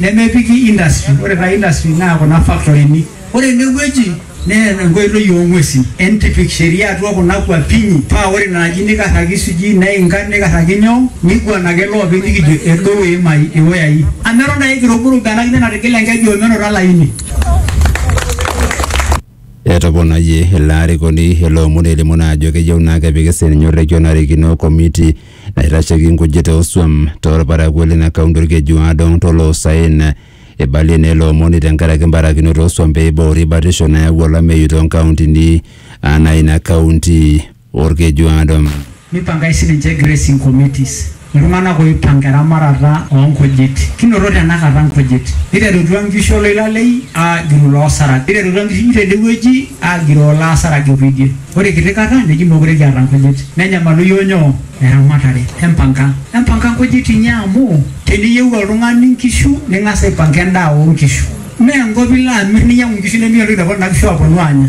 nemepiki industry ore taa industry naa kuna faktorini ore enewueji nee enkoitoi oong'uesin entipik sheria atua kuna kuapinyi paa ore ina aji nikarraki sijui neinga nikarraki nyoo niguan ake loopeny nikijo edou iimai iwoyai amu eton ake kiruburubu ena kine natigile enkeju omenoto olaini Etoponayie ilo arikoni ilo omoni elimu naa ajo keyieu naa kepiki sininye orrekia onarikino komiti naitasheki nkujit oosuam torparakuo lina kaunti Olkejuado toloosaen. Eibalie naa ilo omoni tenkaraki mbarakinoto oosuam pee eiboori batisho nayau olameyu toonkauntini anaa ina kaunti Olkeju Adom. Neipangai sininche grazing committees, iltung'ana ooipanga eramatata oo nkujit. Kinoto tenakata nkujit. Neiterutua nkishu oloilalei aagiroo iloosarag. Neiterutua nkishu tede wueji aagiroo iloosarag ekuedie. Ore kiti kata neji meekure kiata nkujit. Nenyamalu iyiook nyoo? Eramatare. Empanga. Empanga nkujit inyi amu teniyieu oltung'ani nkishu ning'as aipanga endaa oo nkishu. Mme enkop ilo amir ninyiang'u nkishu nimiyiolo entoki napuonu nena kishu aanya.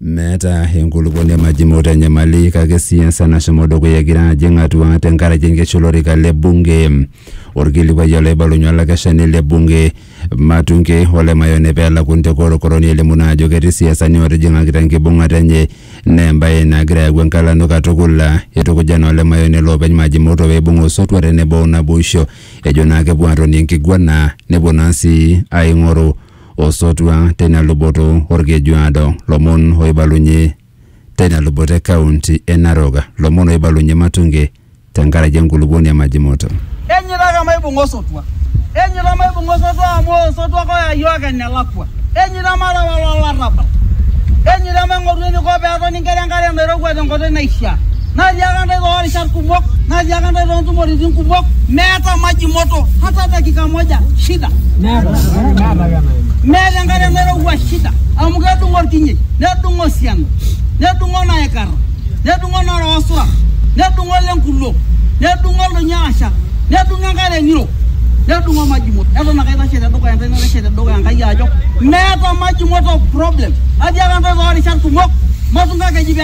Meeta enkulupuoni e Majimoto enyamali kake siasa nashomo dukuya egira ajing atua tenkaraki enkesha olorika le bunge. Olkilikuai olaibalunye olakeshani le bunge Matunge ole Mayone pee elakuni te korokoroni elimu naa ajo ketii siasani ootijing'akita enkibung'ata enye naa embae nagira ayau enkalano katukul. Eitukuja naa ole Mayone loopeny Majimoto pee eibung osotua tenebo o naboisho ejo naa kepuo aatonie enkiguana nepuo naa sii aing'oru osotua teina luboto Olkejuado, lomon oibalunye teina luboto e kaunti e Narok, lomon oibalunye Matunge tenkaraki enkulupuoni e Majimoto. Enyiitaka maibung'a osotua, enyiita maibung'a osotua amu osotua ake oya iyiook enelakua. Enyiita mareu alo olarrabal, enyiita maing'oru eneiko pee etoni nkera enkare nairowua tenkoitoi naishiaa. Natiaaka intae too rishat kumok, natiaaka intae too ntumoritin kumok, meeta maji moto hata dakika moja, shida. Meeta enkare nairowua, shida. Amu kedung'o ilkinyei, nedung'o osiana, nedung'o naaikarra, nedung'o nooloosura, nedung'o ile nkulo, nedung'o ildonyo aashal, nedung'o enkare ng'iro, nedung'o maji moto. Eton ake aitashe te dukuya intae naitashe te dukuya Enkai ajo meeta maji moto problem. Atiaaka intae too rishat kumok, matungakeji pee.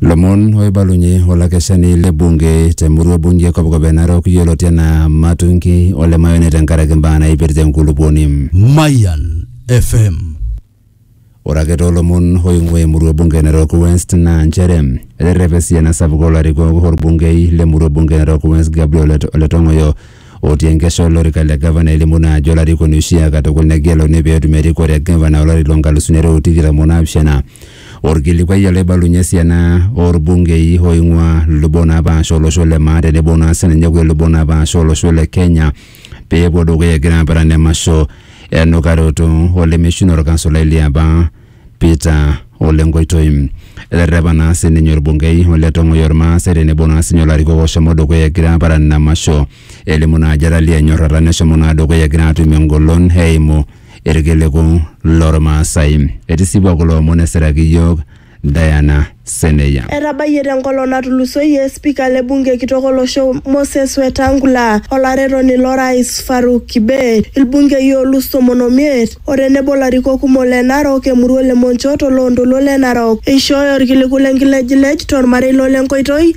Lomon oibalunye olakeshani le bunge te murua bunge kopkop e Narok yioloti anaa Matungi ole Mayoni tenkaraki mbaa naipirta enkulupuoni. Mayan FM. Ore ake too lomon oing'ua emurua bunge e Narok West naa nchere eterrepa esiana sapuk oo larikok olbungei le murua bunge e Narok West Gabriel Ole Tong'oyo otii enkesha o lorika le gavana elimu naa ajo olarikoni oshiaa katukul negeluni pee etum erikore e gavana olari loo nkalusuni are o tikitam o naapishana. Olkilikuai ele oibalunye esiana oo lbungei ooing'uaa lubot naapasha o losho le maa tenebo naa sininye kulie lubot naapasha o losho le Kenya pee epuo dukuya egira aparan emasho e nukaroto o lemeshuno o lkansulai liapa Peter Ole Nkoitoi. Eterrepa naa sininye orbungei Ole Tong'oi ormaasai tenebo naa sinye olarikok oshomo dukuya egira aparan ina masho elimu naa ajo etaliaa enyorrata neshomo naa dukuya egira atum engolon eimu irkiliku lormaasai. Etisipua kulo omon esiraki iyiook Diana Seneya. Etabayie te nkolong natulusoyie spika le bunge kitok olosho Moses Wetangula, olaretoni lo rais Farouk Kibet, ilbungei oolus tomon o miet o tenebo larikok kumok le Narok, Emurua le Monchot o loo ntoluo le Narok eishooyo olkiliku le nkilejilej to lmarei lo le nkoitoi